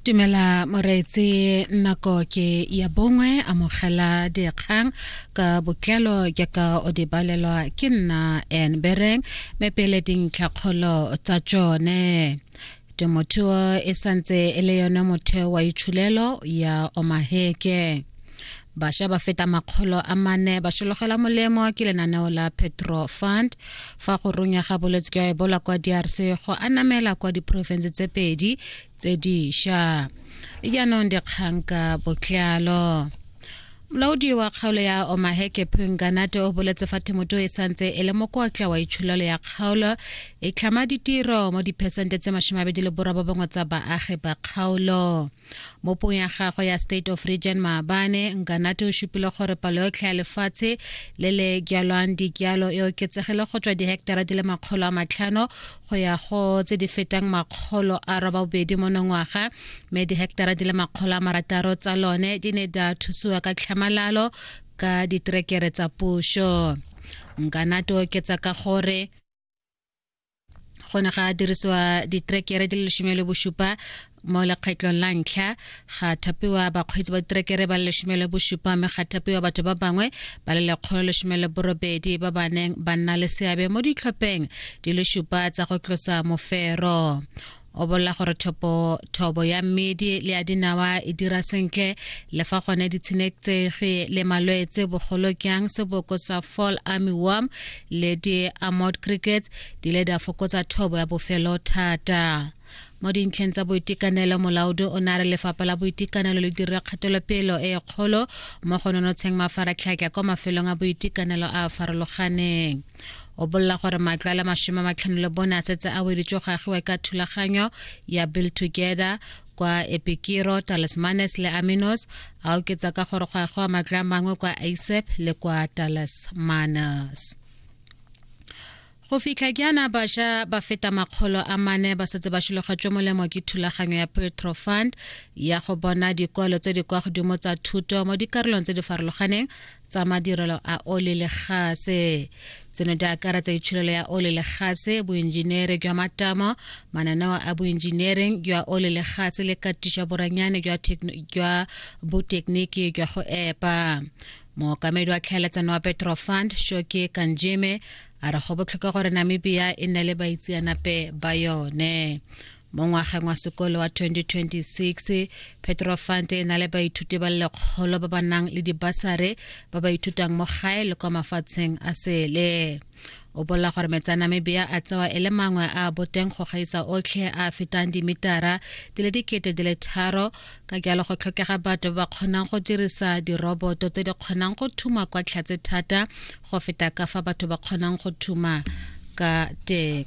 Tumela moreetse nako ke ya bongwe amogela dikgang ka botlalo jaaka o di balelwa ke nna en bereng me pele dintlhakgolo tsa tsone temothuo e santse e le yone motheo wa itshulelo ya omaheke Basha ba feta makgolo a mane ba sologela molemo ke lenaneo la Petro Fund fa go runya ga bolwetse jwa Ebola kwa DRC go anamela kwa diporofense tse pedi tse diša. Jaanong dikgang ka botlalo molaodi wa kgaolo ya omaheke phunganate o boletse fa themoto e santse e le mokotla wa itsholelo ya kgaolo e tlhama ditiro mo diphesente tse masome abedi le borobobongwe tsa baagi ba kgaolo mo pong ya gagwe ya state of region maabane nkanate o supile gore palo yotlhe ya lefatshe le le jalwang dijalo e oketsegile go tswa diheketara di le makgolo a matlhano go ya go tse di fetang makgolo a roba bobedi mo nongwaga mme diheketara di le makgolo a marataro tsa lone di ne di a thusiwa ka tlhamalalo ka diterekere tsa puso nkanate oketsa ka gore go ne ga dirisiwa ditrekere di le lesome le bosupa mo lekgetlong la ntlha ga thapiwa bakgweetsi ba diterekere ba le lesome le bosupa mme ga thapiwa batho ba bangwe ba le lekgolo lesome le borobedi ba ba neng ba nna le seabe mo ditlhopheng di le supa tsa go tlosa mofero o bolela gore thopo thobo ya mmedi le ya dinawa e dira sentle le fa gone ditshenektsegi le malwetse bogolo kyang seboko sa fall army worm le di-amod crickets di ile di a fokotsa thobo ya bofelo thata mo dintlheng tsa boitekanelo molaodi o ne a re lefapha la boitekanelo le dira kgatelopelo e kgolo mo go nonotsheng mafaratlhatlha kwa mafelong a boitekanelo a a farologaneng o bolela gore matlo a le mashome a matlhano le bone a setse a weditswe go agiwa ka thulaganyo ya bill together kwa epikiro talismanes le aminos a oketsa ka gore go agiwa matlo a mangwe kwa isep le kwa talismanes go fitlha jaana bašwa ba feta makgolo a mane ba setse ba šilogatšwe molemo ke thulaganyo ya petro fund ya go bona dikwalo tse di kwa godimo tsa thuto mo dikarolong tse di farologaneng tsa madirelo a ole le gase tseno di akaretsa itsholelo ya ole le gase boenjenere jwa matamo mananeo a boenjenering jwa ole le gase le katiša boranyane jwa botekiniki jwa go epa mookamedi wa tlhaeletsano wa petro fund shoke kanjeme a re go botlhokwa gore namibia e nne le baitseanape ba yone mo ngwageng wa sekolo wa 2026 petrofant e na le baithuti ba lekgolo ba ba nang le dibasare ba ba ithutang mo gae le kwa mafatsheng a sele o bolela gore metsi a namibia a tsewa e le mangwe a boteng go gaisa otlhe a fetang dimitara di le dikete di le tharo ka jalo go tlhokega batho ba ba kgonang go dirisa diroboto tse di kgonang go thuma kwa tlhatse thata go feta ka fa batho ba kgonang go thuma ka teng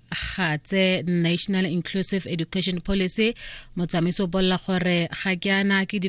ga tse national inclusive education policy motsamaiso o bolela gore ga ke ana ke